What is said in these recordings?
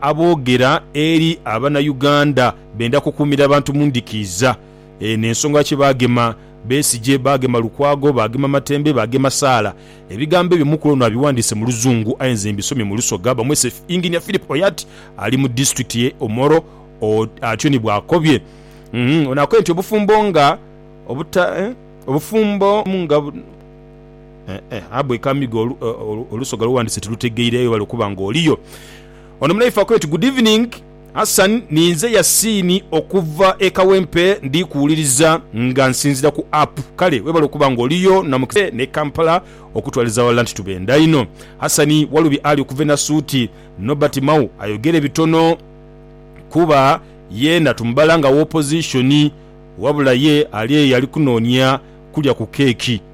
Aboogera eri Abanauganda benda kukuumira abantu mu ndikiiza eno ensonga lwaki baagema Besigye, baagema Lukwago, baagema Matembe, baagema Saala. Ebigambo ebyo Mukulu ono abiwandiise mu Luzungu aye nze mbisomye mu Lusoga bamwese Engineer Phillip Oyat ali mu disitulikiti ye Omoro atyo ni bw'akobye. Ono akobye nti obufumbo nga obufumbo nga. Ahabwa ekamigho olusoga lwe wandise tilutegeire aye webale okuba nga oliyo. Ono munaife akooti good evening Hassan ninze Yasini okuva e kawempe ndikuwuliriza nga nsinzira ku app kale webale okuba nga oliyo namukisa ne Kampala okutwaliza awalala nti tubenda inho Hassan Walubi Ali okuva e Nasuuti Nobert Mao ayogere bitono Kuba yeena tumubala nga w'opposition wabula ye ali eyo alikunonia kulya ku keeki.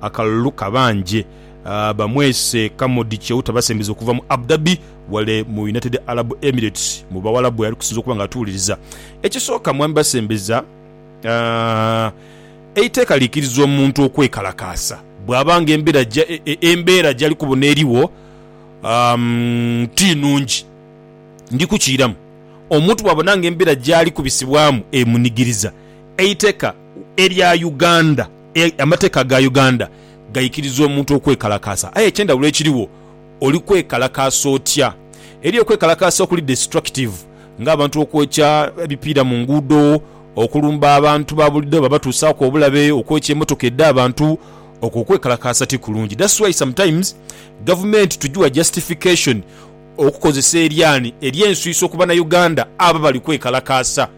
akalulu kabanje bamwese Kamodi Cheuta basembize okuva mu Abu Dhabi wale mu United Arab Emirates mu Bawalabu weyali kusinza okuba nga atuuliriza. Ekisooka mwami basembeza eiteeka likiriza omuntu okwekalakaasa bwaba nga embeera gyali kubona erigho ti nungi. Ndi kukiiramu, omuntu bwabona nga embeera gyali kubisibwamu emunigiriza, eiteka. erya Uganda, amateeka ga Uganda gaikiriza omuntu okwekalakaasa aye ekyendhawulo ekirigho oli kwekalakaasa otya? Eriyo okwekalakaasa okuli destructive nga abantu okwokya ebipiira mu nguudo, okulumba abantu ba bulido babatuusaaku obulabe, okwokya emotoka edha abantu. Okwo okwekalakaasa ti kulungi that's why sometimes gavumenti tujiwa justification okukozesa eryani eryenswiiso ku banauganda abo abali kwekalakaasa.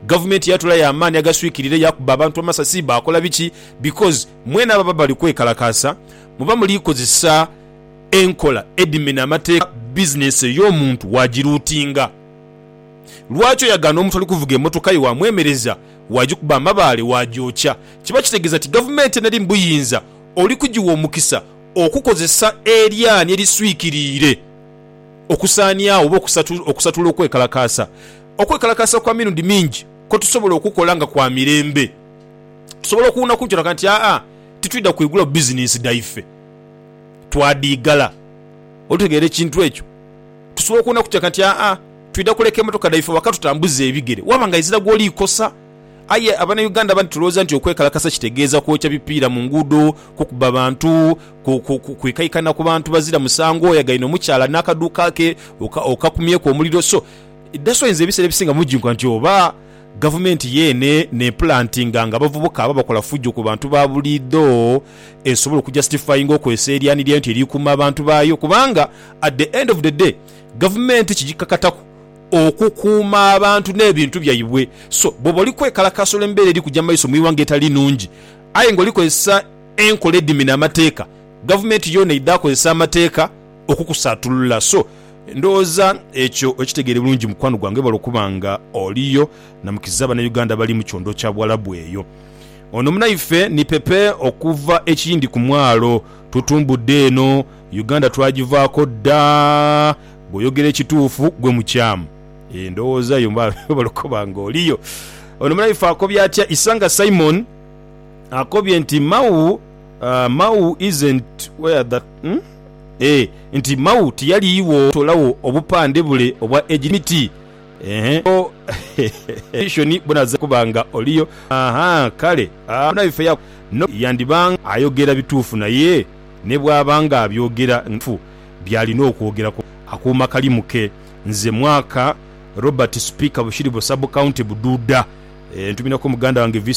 Gavumenti yatula ya maani agaswikirire yakuba abantu amasasi bakola biki because mwena baba bali kwekalakaasa muba muli kozesa enkola edhimena amateeka business eyomuntu wagiluutinga lwaki oyagaana omuntu ali kuvuga emotoka ye wamwemereza wagikuba amabaale wagyokya kiba kitegeza ti gavumenti enali mubuyinza oli kugiwa omukisa okukozesa eryaanhi eriswikiriire okusaaniagho oba okusatula okwekalakaasa Okwekalakaasa kwa mirundi mingi kwe tusobola okukola nga kwa mirembe. Tusobola okuwuuna ku nkyo tulaga nti, Aa, titwidha kwigulawo bizineesi dhaife. Twadhiigala. Olitegeera ekintu ekyo? Tusobola okuwuuna ku kiraga nti, Aa, twidha kuleka emotoka dhaife waka tutambuze ebigere. Waaba nga izira gw'oli ikosa. Aye Abanauganda abandi tulowooza nti okwekalakasa kitegeeza kwokya bipiira mu nguudo, kukuba bantu, kwikaikana ku bantu bazira musango, oyagaine omukyala n'akaduuka ke okakumyeku omuliro. So, Idhasoinza ebiseera ebisinga mujinkuka nti oba gavumenti yeene n'epulantinga nga abavubuka aba bakola fujo ku bantu ba buliidho esobole okujasitifayinga okozesa eryanhi lyayo nti eri kuuma abantu baayo kubanga at the end of the day gavumenti kigikakataku okukuuma abantu n'ebintu byaibwe so bwoba oli kwekalakaasa olw'embeera eri kuja mu maiso mu ighanga etali nungi aye nga oli kozesa enkola edhimina amateeka gavumenti yoona idhaakozesa amateeka okukusaatulula. So, ndhoghoza ekyo okitegeere bulungi mukwano gwange. Webale okuba nga oliyo na mukiza Banauganda abali mu kyondoo kya Buwalabu eyo. Ono munaife ni Pepe okuva e Kiyindi ku mwalo. Tutumbudde eno. Uganda twagivaako dda. Bw'oyogera ekituufu, gwe mukyamu. Eeh, ndhoghoza yo. Webale okuba nga oliyo. Ono munaife akobye atya? Isanga Simon akobye nti, Mau. Mau isn't where that hum eeh nti Mau tiyaliigho tolagho obupande bule obwa age limit eeh so edition bunaza kuba nga oliyo ahaa kale bona ife yaku no yandiba nga ayogera bituufu naye nebwaba nga abyogera nga bituufu byalina okwogera ku akuuma kalimu ke nze mwaka Robert speaker bushiri bu sub county buduuda eeh ntumira ko muganda wange.